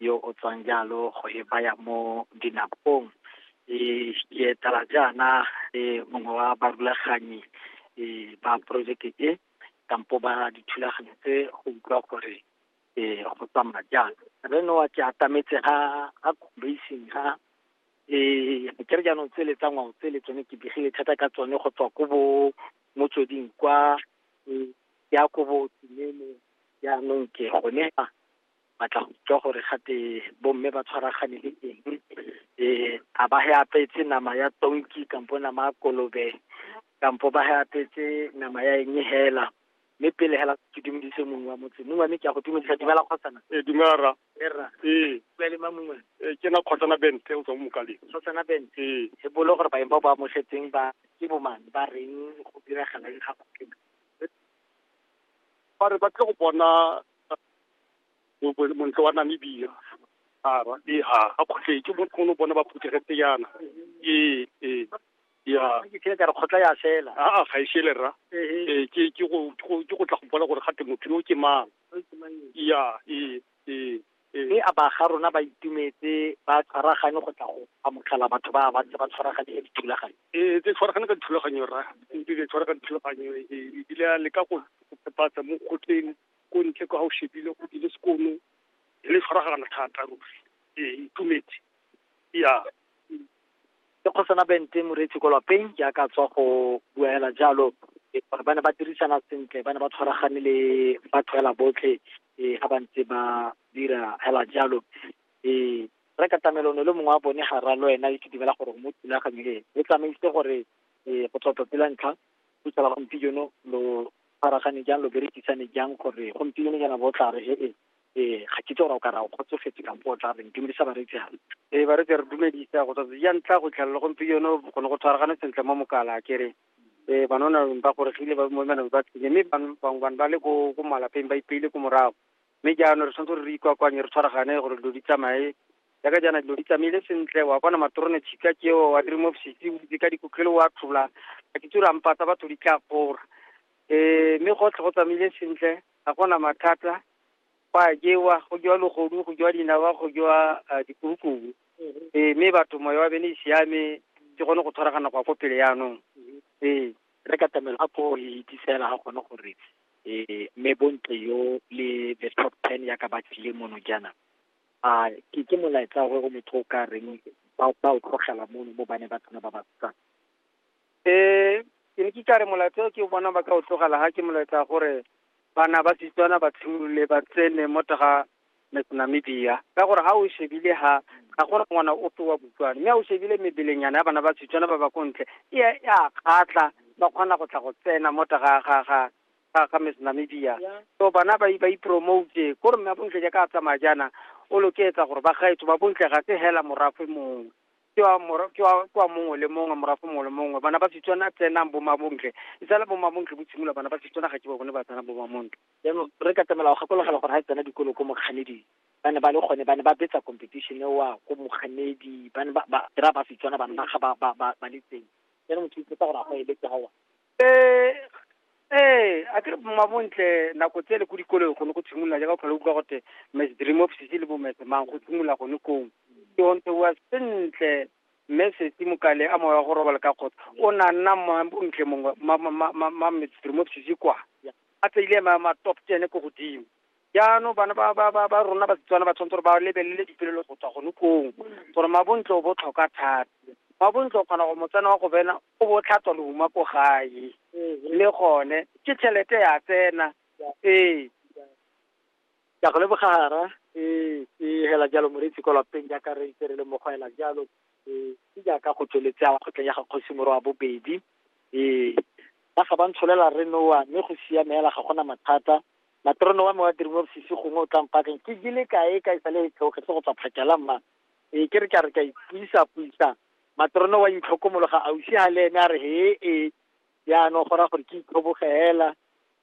yo o tswang jalo go e baya mo dinakong eh, ke etela jaana eh, mongwe wa barulaganyi eh, ba projeke e kampo ba dithulaganyo tse go utlwa gore eh, go tsamaya jang re noa ke atametse ga ga combasin ga eh ke re jaanong tsele tsa ngwao tsele tsone ke begile thata ka tsone go tswa ko bo motsweding kwa eh, ya ko bo tsinene jaanong ke gone a batla go utlwa gore gate bomme ba tshwaragane le eng um a ba he apetse nama ya tonki kampo nama ya kolobe kampo ba he apetse nama ya eng hela mme pele hela ke dumedise mongwe wa motse mongwe mme ke a go dumedisa dumela kgotsana ee dumela ra erra ee bua le ma mongwe ee ke na kgotsana bente o tswa mo mokaleng kgotsana bente ee e bolo gore baeng ba ba amogetseng ba ke bomane ba reng go diragala eng ga ba re ba tle go bona bo- montle wa Namibia a ra ee ha a kgotlhe ke bonkgono bona ba phuthegetse yana ee ee ya ke kile ka re kgotla ya fela a a ga e shele rra ee ke ke go ke go- ke go tla go bona gore gate motho yo ke mang ya ee ee ee mme a baga rona ba itumetse ba tshwaragane go tla go amogela batho ba ba ntse ba tshwaragane ka dithulaganyo ee tse tshwaragane ka dithulaganyo rra ebile tshwaragane dithulaganyo ee ebile a leka go go pepatsa mo kgotleng ko ntle kwa o shebile o ile sekono e le tshwaragana thata ruri ee itumetse ya ke kgosana bente moreetsi ko lapeng ke aka tswa go bua hela jalo e, gore ba ne ba dirisana sentle ba ne ba tshwaragane le batho hela botlhe um ga ba ntse ba dira hela jalo um re ka tamelone le mongwe wa bone ga ra le wena e ke dumela gore mo thulaganyo e o tsamaise gore um go tswa tsatsi la ntlha go tsala gompieno lo tshwaragane jang lo berekisane jang gore gompieno jana bo tla re ee ee ga ke tsora o ka ra o kgotsofetse kampo o tla reng dumedisa bareetsi gale ee bareetsi re dumedisa go tsatsi ja ntlha go tlhelela gompieno gone go tshwaragane sentle mo mokala ke re ee banona ba goregile ba mo manang ba tsile mme bangwe bane ba le ko malapeng ba ipeile ko morago Mme jaanong re tshwanetse gore re ikwakwanye re tshwaragane gore dilo di tsamaye jaaka jaana dilo di tsamaile sentle wa kwana matrone tshika keo wa dream of sitse o itse ka dikotlele wa tlhola a ke tsore ampatsa batho di tla kgora um mme gotlhe go tsamaile sentle ga gona mathata go a jewa go jewa logodu go jewa dinawa go jewa ah, dikurukubu ee mme batho moya wa bene e siame ke gone go tshwaragana go ya ko pele yaanong ee re katamelo a ko e itsisela ga gone gore eh mme bontle yo le the top ten ya ka ba tlile mono jaana a ke ke molaetsa gore o motho o ka reng ba ba o tlogela mono mo bane ba tsena ba ba tsang eh ke ne ke ka re molaetsa o ke bona ba ka o tlogela ha ke molaetsa gore bana ba Setswana ba tshimolole ba tsene mo taga Namibia ka gore ga o shebile ha ga gona ngwana ope wa Botswana mme a o shebile mebelenyana ya bana ba Setswana ba ba ko ntle e a e a kgatlha ba kgona go tla go tsena mo ta ga ga ga ga ga Miss Namibia so bana ba ba ipromote ko re mme a bontle jaaka a tsamaya jaana o loketsa gore ba gaetso ba bontle ga se hela morafe mongwe ke wa mora ke wa ke wa mongwe le mongwe morafe mongwe le mongwe bana ba Setswana tsenang bo mabontle e sala bo mabontle bo tshimolola bana ba Setswana ga ke ba bone ba tsena bo mabontle jaanong re katamela go gakologelwa gore ga e tsena dikolo ko mokganedi ba ne ba le gone ba ne ba betsa competition ewa ko mokganedi ba ne ba ba kry-a ba setswana bana ba ga ba ba ba ba le teng jaanong motho itse gore a go eletse gawa ee a kere mmabontle nako tse le ko dikolong gone go tshimolola jaaka o tlhola utlwa gote mes dream of sisi le bomese mang go tshimolola gone kong ke ontse wa sentle mme sesi mokale a moya go robala ka kgotsa o na nna mmabontle mongwe ma- ma- ma- ma- ma- mes dream of sisi kwa a tseile ma ma top ten ko godimo jaanong bana ba ba ba ba rona basetswana ba tshwanetse gore ba lebelele dipolelo go tswa gone kong gore mabontle o botlhokwa thata mabontle o kgona go motsena wa go bena o bo o tlhatswa leuma ko gae le gone ke tšhelete ya tsena ee Ke a go leboga Hara. Ee, ke hela jalo moreetsi ko lapeng jaaka re itse re le mo go hela jalo. Ee, ke jaaka go tsweletse a kgotleng ya ga kgosi moro wa bobedi. Ee, ba ga ba ntsholela re noa mme go siame hela ga gona mathata. Matrono wa me wa Dream of Sisi gongwe o tla mpakeng ke jele kae ka e sale e tlhoge se go tswa phakela mma. Ee, ke re ke a re ka ipuisa-puisa. Matrono wa itlhokomologa ausi ha le ene a re he ee. Jaanong go raya gore ke itlhoboge hela.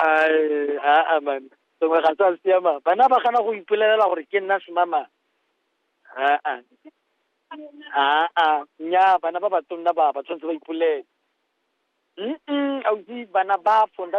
Ai, aa man sengwe ga sa siama bana ba gana go ipolelela gore ke nna semamang aa aa nnyaa bana ba batonna ba ba tshwanetse ba ipolele mm ausi bana ba fonda